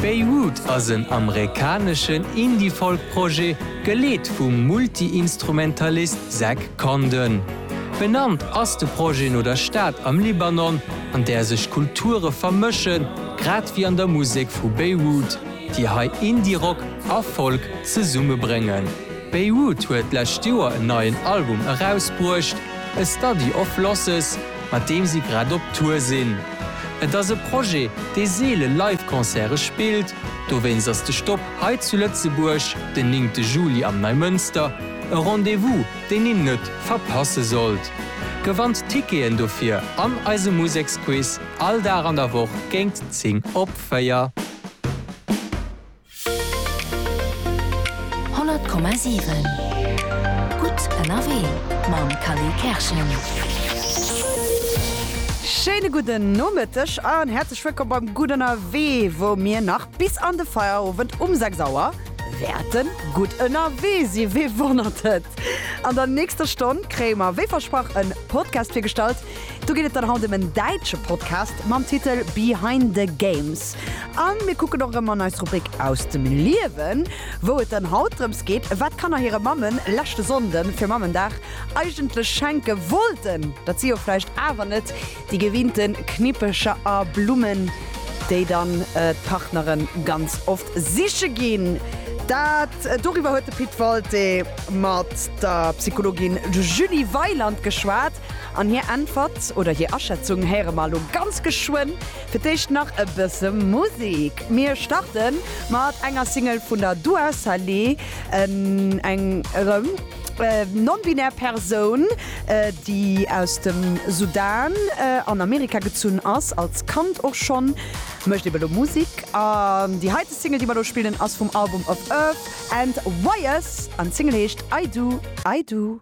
Beirut ass en amerikaneschen Indie-Folk-Projet, geleet vum Multi-Instrumentalist Zach Condon. Benannt ass de Projet no der Stad am Libanon, an där sech Kulture vermëschen, grad wéi an der Musek vu Beirut, déi hei Indie-Rock a Folk zesummebréngen. Beirut huet d'lescht Joer en neien Album erausbruecht, A Study of Losses. mat deem si grad op Tour sinn. Et ass e Projet, dee seele Live-Concerte spillt, dowéinst ass de Stop hei zu Lëtzebuerg den néngte Juli am Neimënster e Rendez-vous, deen een net verpasse sollt. Gewannt d'Ticketen dofir an eisem Museksquiz all Dag an der Woch géingt 10 op 4. 100,7 Gutt ënnerwee mam Khalil Kerschen. Schéine gudden Nomëtteg an häerzlech wëllkomm beim Gutt ënnerwee, wou mir nach bis an de Feierowend um 6 Auer wäerte gutt ënnerwee si. Wee wonnert et? An der nächster Stonn kréie mer wéi versprach en Podcast virgestallt, Do geet et dann haut em en däitsche Podcast mam Titel Behind the Games. A mir kucken och erëm an eis Rubrik Aus dem Liewen, wou et dann haut drëms geet, wat Kanner hire Mammen leschte Sonnde fir Mammendag eigentlech schenke wollten. Dat si jo vläicht awer net déi gewinnte Knippecher a Blummen, déi dann d'Partnere ganz oft siche ginn. Dat doriwwer huet de Pit Walté mat der Psychologin Julie Weiland geschwat. An hir Äntwert oder hir Aschätzung héiere mer elo ganz geschwënn. Fir d'éischt nach e bësse Musek. Mir starte mat enger Single vun der Dua Saleh, eng erëm non-binär Persoun, déi aus dem Sudan an Amerika gezunn ass, als Kand och schonn. Mécht ebe lo Musek. An déi heite Single, déi mer elo spillen, ass vum Album of Earth and Wires an d'Single heescht I Do, I Do.